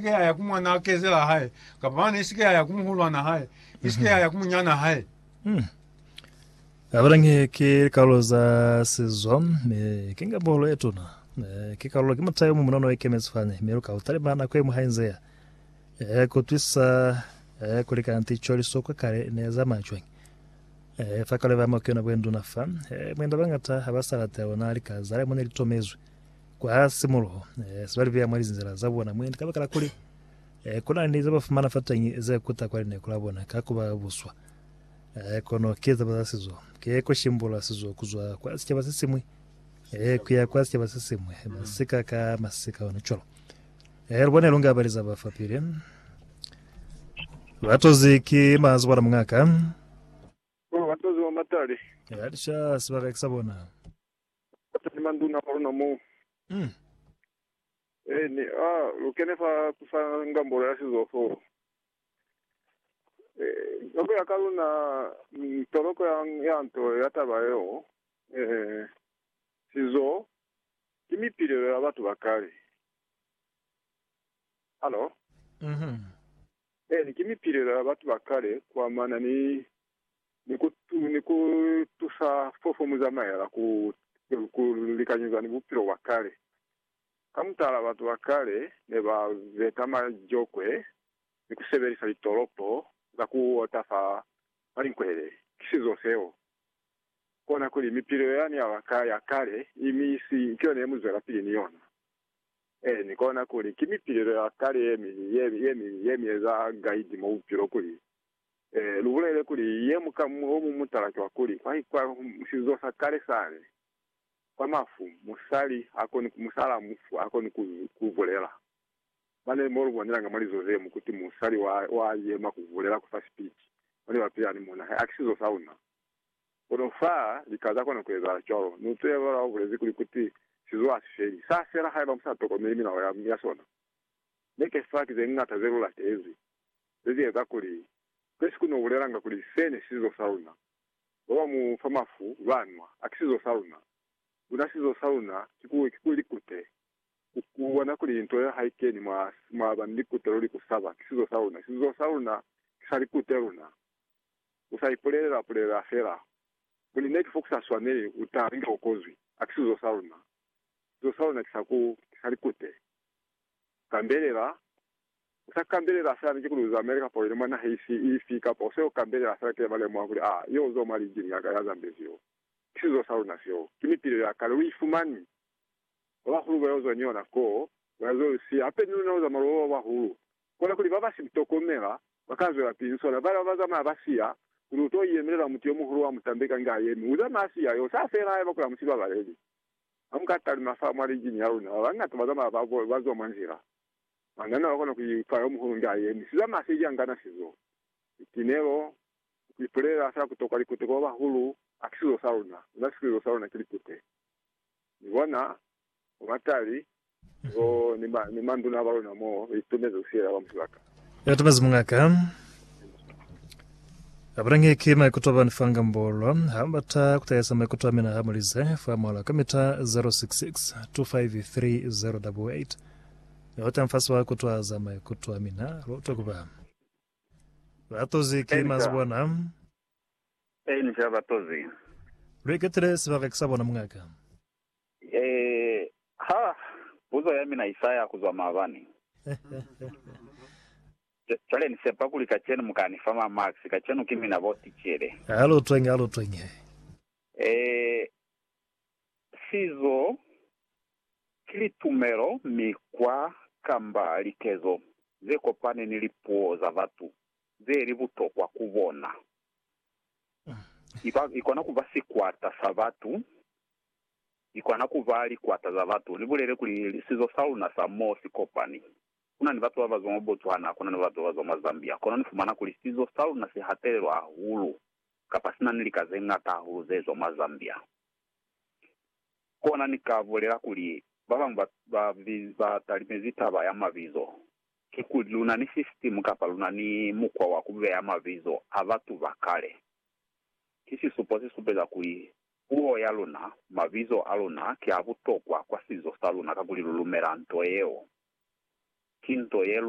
Isike yaya ku mwanaa kezela hae, kapa mane isike yaya ku muhulwana hae, isike mhm. yaya ku munyana hae. Hmm. Abalange ke likarolo za sizwa, me ke nga bolo e tuna. Eh, ke karolo ke mutayo mu munono e kemezi fani, me lu ka utalima nako e mu hainzeya. Eh, ku twisa eh, ku likana ticho lisokwa kale ne za macwe. Eh, fa kale ba mo ke yona bwenduna fa, eh, mwenda bangata ha ba sa latela ona lika zale mo ne litomezwe. Kwa simuluho, se ba li beya mwa lizinzala za bona mwendi kabakala kuli ku na ni ze ba fumana fatañi ze kuta kwa lineko la bona ka ku ba buswa. Kono ki taba za sizo, ki ku shimbula sizo ku zwa kwa sicaba se siñwi ku ya kwa sicaba se siñwi, masika ka masika, ona cwalo. Lu bone lu nga ba li za ba fapili. Ba tozi ki mazi bona muñ'a ka. Ba tozi mwa matali. Ba lisha sibaka ki sa bona. Mupateni manduna kwa luna moo. Mm. Eh, ni, ah, lu kene fa kusa ngambolo ya sizo foo. Eh, ka kuya ka luna, mm, toloko ya, ya nto ya taba yeo, eh, sizo ki mipilelo ya batu ba kale. Hallo? Mhm. Eh, ni ki mipilelo ya batu ba kale kuamana ni ni ku tusa fofo mu zamaela ku likanyeza ni bupilo bwa kale. Ka mutala, batu ba kale ne ba beta majokwe ni ku sebelisa litolopo za ku ota fa malinkwele. Ki sizo seo. Kona kuli mipilo yani ya kale i misi ki yona ye mu zwelapili ni yona. Ee, ni kona kuli ki mipilelo ya kale ye mi eza gaidi mwa bupilo kuli Ee, lubulele kuli, ye muka mu, o mu mutala cwa kuli, kwa, kwa sizo sa kale sani, kwa mafu, musali ha koni, musala mufu ha koni ku, ku bulela. Mane mo lu bonelanga mwa lizo zemu kuti musali wa, wa yema ku bulela ku fa sipiti, mane ba pila ni muna, ha ki sizo sa una. Kono fa, lika za kona ku ezahala cwalo. Ni utwile ba ba bulezi kuli, kuti, Sizo ha si feli. Sa fela haiba mu sa tokomeli milao ya, ya sona. Neke fa ki ze ñata ze lu latezi. ze ze eza kuli kube siku no bulelanga kuli se ne sizo sa luna, ba ba mu fa mafu ba nwa, a ki sizo sa luna. Kuna sizo sa luna ki ku, ki ku likute. Ku, ku bona kuli nto yeo ha i keni mwa, mwa ba ni likute luli ku saba, ki sizo sa luna. Sizo sa luna ki sa likute luna. U sa ipulelela, pulelela fela kuli ne ki fo ku sa swaneli, u ta linga u kozwi. A ki sizo sa luna. Sizo sa luna ki sa ku, ki sa likute. Kambelela. U sa kambelela fela niti kuli u zamele kapa u yile mwa naha ifi, ifi, kapa u se u kambelela fela kile ba lemuha kuli, Aa, yo uzo mwa linjili ya ka ya zambezi yo. Ki sizo sa luna seo. Ki mipilo ya kale. U i fumani. Ba bahulu ba yo zwa ni yona koo, ba ya zo i siya. Hape ni luna lu zamala u ba bahulu. Kona kuli ba ba si tokomela ba ka zwela pili ni sona. Bale ba ba zamaya ba siya, kuli u to yemelela mutu yo muhulu wa mu tambeka inge a yemi, u zamaya a siya yo. Sa fela haiba kuli ha mu si babaleli. Ha mu ka talima fa mwa linjili ya luna, ba bañata ba zamaya ba zwa mwa nzila. Banana ba kona ku itwa yo muhulu nge a yemi siza mwa se ki angana sizo. Litinelo, ku ipulela fela ku tokwa likute kwa ba bahulu ha ki sizo sa luna. Luna sikilizo sa luna ki likute. Mi bona, bo matali, bo, ni ma, ni manduna ba luna moo, ba itumezi ku siela ba musibaka. Ya tumezi mungaka. Abulangi ki maikuto a bani fa ngambolo. Ha mu bata ku tahisa maikuto a mina ha mu lize fa mola, komita 0662530088. Ni utwa mfasi wa kutwaza maikuto a mina, lu utwe ku ba batozi ki mazibwana. Eeni, ki ba batozi. Lu iketile sibaka ki sa bona muñaka. Ee, ha puzo ya mina i sa ya ku zwa maabani. Cwale ni sepa kuli kacenu mu ka ni fa mamakisi, kacenu ki mina bo ticele. Ha lu utwenge, ha lu utwenge. Ee, Sizo ki litumelo, mikwa, kamba likezo ze kopani ni lipuo za batu ze li butokwa ku bona. I kona ku ba sikwata sa batu, i kona ku ba likwata za batu. Ni bulele kuli, sizo sa luna sa mo si kopani. Ku na ni batu ba ba zwa mwa Botswana, ku na ni batu ba ba zwa mwa Zambia, kono ni fumana kuli sizo sa luna si hatelelwa hahulu kapa si na ni lika ze ñata hahulu ze zwa mwa Zambia. Kona ni ka bulela kuli, ba bañwi ba, ba, ba talimezi taba ya mabizo, kikuli luna ni sisitimu kapa luna ni mukwa wa ku beya mabizo a batu ba kale. Ki sisupo se supeza kuli puo ya luna, mabizo a luna ki a butokwa kwa sizo sa luna kakuli lu lumela nto yeo. Ki nto ye lu